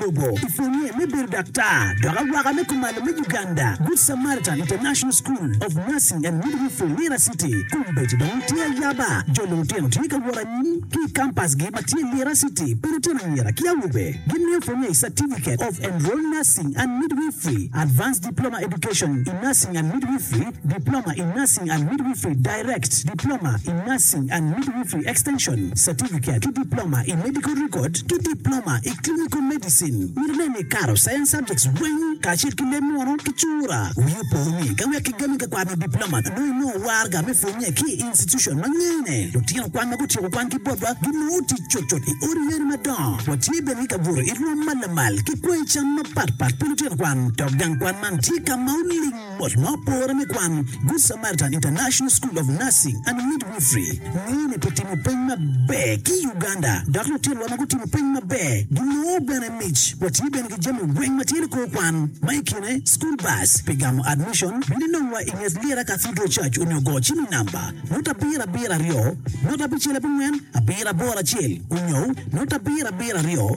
Bobo i pwonye me bedo daktar dok awaka me kumalo me Uganda, Good Samaritan International School of Nursing and Midwifery, Lira City. Kombeddi dong tye ayaba, jo lulutino tye ka wot anyim ki i kampasgi ma tye Lira City pa lutino anyira ki awobe. Gimiyo pwonye i Certificate of Enrolled Nursing and Midwifery, Advanced Diploma Education in Nursing and Midwifery, Diploma in Nursing and Midwifery, Direct, Diploma in Nursing and Midwifery Extension, Certificate, ki Diploma i Medical Record ki Diploma i Clinical Medicine. Myero nen ni ikato Science Subjects weng kacel ki leb munu ki cura. Wii opo ni ka wek kigami ka kwano Diploma nongo inongo warga me pwonye ki i institution ma ngene. Lutino kwan ma gutyeko kwan ki botwa ginongo tic cutcut i odi yeni madongo. Watye bene ki ka buto i rwom ma lamal ki kwango i cam mapatpat pi lutino kwan dok gang kwan man tye ka ma oling. Bot ma opore me kwan, Good Samaritan International School of Nursing and Midwifery ngeyo ni pi timo peny maber ki Uganda dok lutinwa ma gutimo peny maber ginongo bene mic. Watye bene ki jami weng ma tye ni kor kwan ma i kine school bus pi gamo admission. Bino inongwa i nget Lira Cathedral Church onyo go cim i namba nota abiro abiro aryo nota abicel abongwen abiro aboro acel onyo nota abiro abiro aryo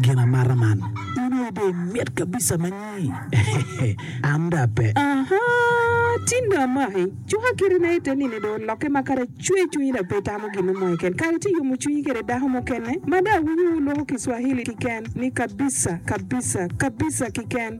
Gin amata man. In aye dong imit kabisa ma nyi. An dong ape. Aha! Tin dong amaki. Cuka kite na ite nini dong olokke ma kara icwer cwinyi dong pe itamo gin mo keken. Kara ci iyomo cwinyi kede dako mukene ma dong awinyo wulwoko Kiswahili kiken ni kabisa, kabisa, kabisa kiken.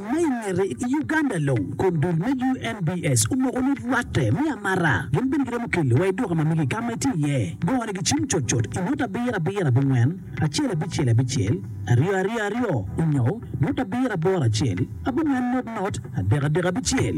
Ma i ngete, i Uganda long, kom dul me UNBS omoko ni rwatte me amata gin bene giromo keli wa i duka ma mege ka ma itye iye. Gone gicim cut cut i nota abiro abiro abongwen, acel abicel abicel, aryo aryo aryo, onyo nota abiro aboro acel, abongwen not not, adek adek abicel.